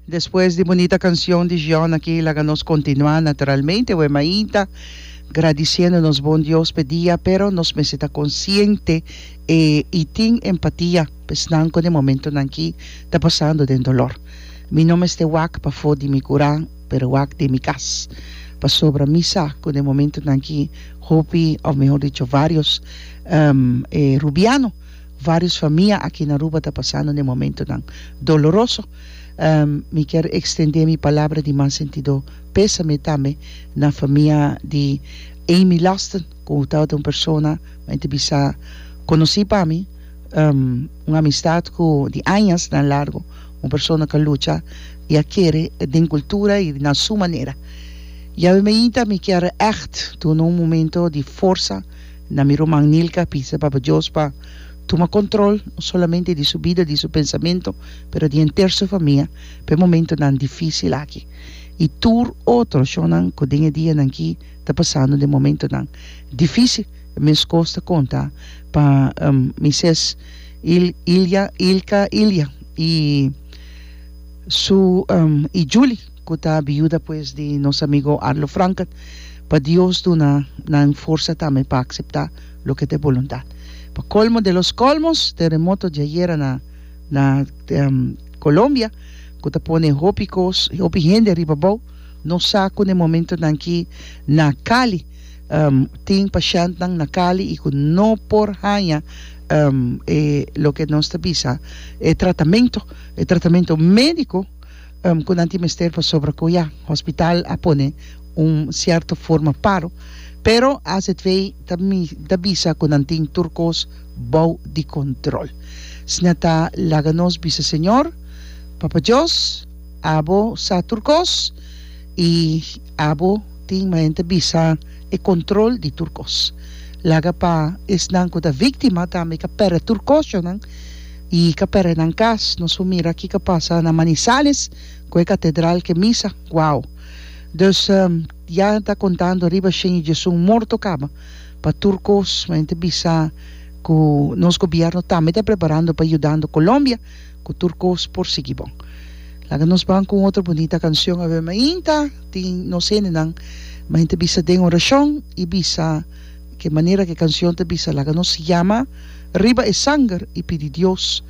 Despues di bunita cancion di John aki laga nos continua naturalmente we mainta gradiciendo nos bon Dios p'e dia pero nos mester ta consciente e y tin empatia p'esnan cu den momentonan aki ta pasando den dolor. Mi no mester wak pafo di mi cura pero wak den mi cas pasobra mi sa cu den momentonan aki hopi of mejor dicho varios e rubiano Vários famia aki na Aruba ta pasando den momentonan doloroso. Mi kier ekstendé mi palabra di mas sentidó pésame tambe na famia di Amy Loston, ku tabata un persona men ta bisa konosí pa mi, un amistat ku di añasnan largu, un persona ku a lucha i a kere den kultura i na su manera. Yawe mainta mi kier ègt duna un momento di forsa Na mi ruman Nilka bisa Papa Dios pa tuma control no solamente di su bida, di su pensamento, pero di henter su famia p'e momentonan dificil aki y tur otro shonnan cu den e dianan aki ta pasando den momentonan dificil. Mescos ta conta pa mi ses Il, Ilya, Ilka, Ilya y su y Julie. cu ta biuda pues di nos amigo Arlo Franken, pa Dios duna nan forsa tambe pa acepta loke ta e boluntad. Pa colmo de los colmos, terremoto diayera na na Colombia, cu ta pone hopi cos, hopi hende riba bou, no sa cu n'e momentonan aki na Cali tin pashentnan na Cali y cu no por haya e loke nos ta bisa e tratamento, e tratamento medico, ku nan tin mester pasobra ku ya hospital a pone un sierto forma paro pero azv ta bisa ku nan tin tur kos bou di kontrol si nan ta laga nos bisa Señor Papa Dios abo sa tur kos i abo tin manera bisa e kontrol di tur kos laga pa esnan ku ta víktima tambe ka pèrdè tur kosnan. I ka perde nan kas, nos por mira kiko pasa na Manizales ku e katedral, ke misa, wow! Dus ya ta kontando riba shen i Jesús morto kaba pa tur kos, ma yen ta bisa ku nos gobièrnu tambe ta preparando pa yudando Colombia ku tur kos por sigui bon. Laga nos ban ku un otro bunita kanshon a ver mainta tin nos hendenan, ma yen ta bisa den orashon i bisa. Ke manera ku e kanshon ta bisa, Laga nos yama riba e sanger i pidi Dios